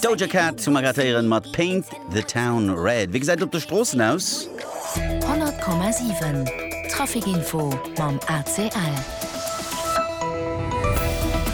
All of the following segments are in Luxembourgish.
D'Doja Cat zu Margretéieren mat Paint the Town Red. Wéi gesäit et op de Stroossen aus? 100,7 Traficinfo mam ACL.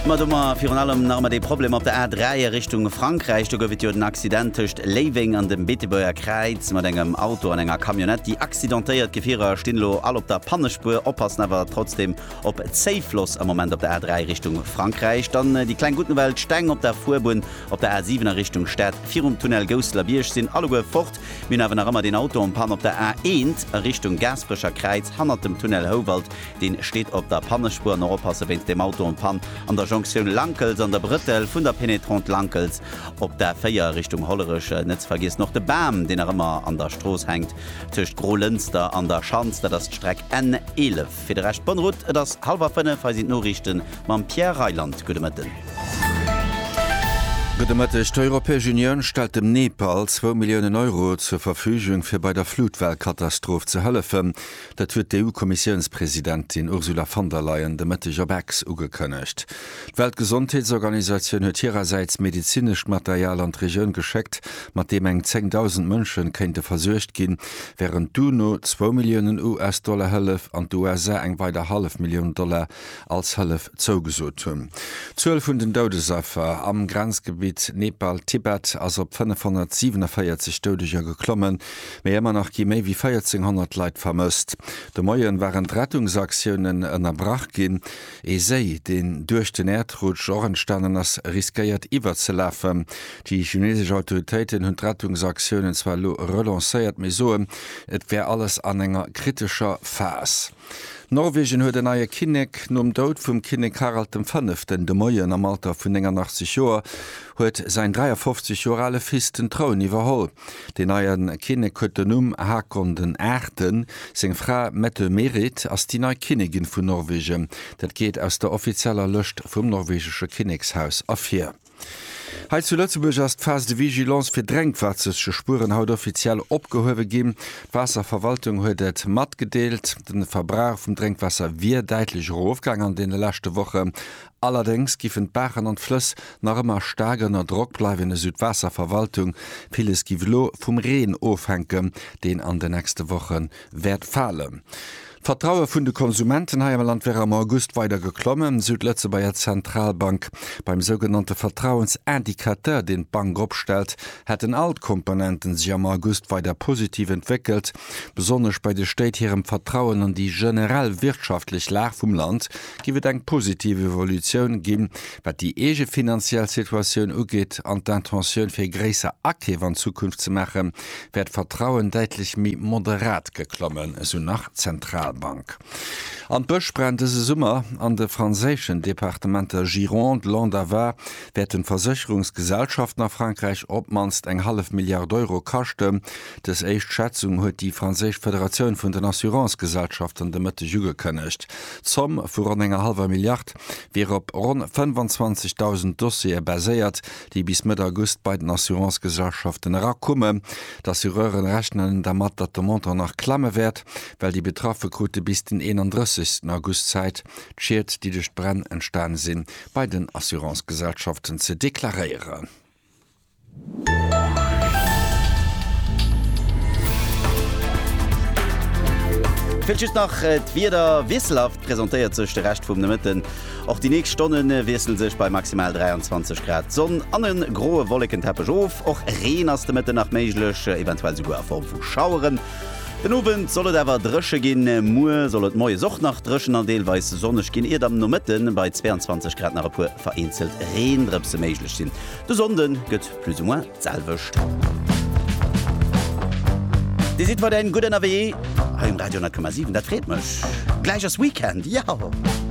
Ma do mar virun allem nach ëmmer dee Problem op der A3 a Richtung Frankräich. Do gouf et jo den Accident tëscht Léiweng an dem Beetebuerger Kräiz mat engem Auto an enger Camionnette, déi accidentéiert. D'Gefierer stinn elo all op der Pannespuer, oppassen awer trotzdem Op Zéifloss am Moment op der A3 Richtung Frankräich, dann déi kleng gutt Nouvelle, d'Steng op der Fuerbunn op der A7 a Richtung Stad virum Tunnel Gousseler Bierg sinn alleguer fort. Mir hunn awer nach ëmmer deen Auto en Panne op der A1 a Richtung Gaasperecher Kräiz hannert dem Tunnel Houwald, deen steet op der Pannespuer. An och oppasse wéinst deem Auto en Panne an der Jonktioun Lankels an der Brëttel vun der Pénétrante Lankels op der A4 Richtung Hollerech. Net ze vergiessen och de Bam, deen nach ëmmer an der Strooss hänkt tëscht Grolënster an der Schanz, dat ass d'Streck N11. Fir de Rescht bonne route, et ass hallwer 5, hei sinn d'Noriichten mam Pierre Reyland. Gudde Mëtten. Gudde Mëtteg. D'Europäesch Unioun stellt dem Nepal zwou Milliounen Euro zur Verfügung, fir bei der Flutwellkatastroph ze hëllefen. Dat huet d'EU-Kommissiounspresidentin Ursula von der Leyen de Mëtteg op Ex ugekënnegt. D'Weltgesondheetsorganisatioun huet hirersäits medezinescht Material an d'Regioun geschéckt, mat deem eng 10.000 Mënsche kéinte versuergt ginn, wärend d'UNO zwou Milliounen US-Dollar Hëllef an d'USA eng weider hallef Millioun Dollar als Hëllef zougesot hunn. D'Zuel vun den Doudesaffer am Grenzgebitt Nepal-Tibet ass op 547 Doudeger geklommen, mee ëmmer nach gi méi wéi 1.400 Leit vermësst. De Moien waren d'Rettungsaktiounen ënnerbrach ginn. Ee Séi, deen duerch den Äerdrutsch och entstanen ass, riskéiert iwwerzelafen. Déi chinesesch Autoritéiten hunn d'Rettungsaktiounen zwar elo relancéiert, mee soen, et wär alles an enger kritescher Phas. Norwegen huet en neie Kinnek. Nom Doud vum Kinnek Harald dem Fënneften de Moien am Alter vun 89 Joer huet säin 53 Joer ale Fils den Troun iwwerholl. Deen neien Kinnek huet den Numm Haakon den Aachten. Seng Fra Mette-Merit ass déi nei Kinnegin vun Norwegen. Dat geet aus der offizieller Lëscht vum norwegesche Kinnekshaus ervir. Hei zu Lëtzebuerg ass d'Phase de vigilance fir Drénkwaasserspueren haut offiziell opgehuewe ginn. D'Waasserverwaltung huet et matgedeelt. De Verbrauch vum Drénkwaasser wier däitlech erofgaangen an deene leschte Wochen. Allerdéngs giffen d'Baachen an d'Flëss nach ëmmer staark ënner Drock bleiwen, esou d'Waasserverwaltung. Villes giff elo vum Reen ofhänken, deen an de nächste Woche wäert falen. D'Vertraue vun de Konsumenten hei am Land wär am August weider geklommen, esou d'Lëtzebuerger Zentralbank. Beim sougenannte Vertrauensindicateur, deen d'Bank opstellt, hätten all d'Komponenten sech am August weider positiv entwéckelt. Besonnesch bei de Stéit hirem Vertrauen an déi generell wirtschaftlech Lag vum Land giff et eng positiv Evolutioun ginn, wat déi eegefinanziell Situatioun ugeet an d'Intentioun fir gréisser Akeef an Zukunft ze maachen, wär d'Vertrauen däitlech méi moderat geklommen, esou nach d'Zentralbank. An d'Bësch brennen dëse Summer. An de franséischen Departementer Gironde, Landes a Var wäerten d'Versécherungsgesellschaften a Frankräich op d'mannst eng hallef Milliard Euro kaschten, Dës éischt Schätzung huet déi franséisch Federatioun vun den Assurancegesellschaften de Mëtteg ugekënnegt. D'Zomm vu ronn enger hallwer Milliard wier op ronn 25.000 Dossiere baséiert, déi bis Mëtt August bei den Assurancegesellschaften erakumen. D'Assureure rechnen dermat, datt de Montant nach klamme wäert, well déi Betraffe krute bis den 31 August Zäit, d'Schied, déi duerch d'Bränn entstane sinn, bei den Assurancegesellschaften ze deklaréieren. Fehlt just nach äh, d'Wieder wiesselhaft presentéiert sech de Recht vum Nëmëtten. Och déi nächst Stonnen äh, wiesselen sech bei maximal 23 Grad Sonn an en groe Wollekenteppech of. Och Reen ass de Mëtten nach méiglech, äh, eventuell souguer a Form vu Schaueren. Den Owend soll et awer dréche ginn, muer soll et moies och nach dréchen an deelweis sonneg ginn, iert am Nomëtten bei 22 Grad nach e puer vereenzelt Reendrëpse méiglech sinn. De Sonnde gëtt plus ou moins d'selwecht. Dir sidd weiderhin gutt ënnerwee hei um Radio 10,7. Dat freet mech. Gläich ass Weekend, yahoo!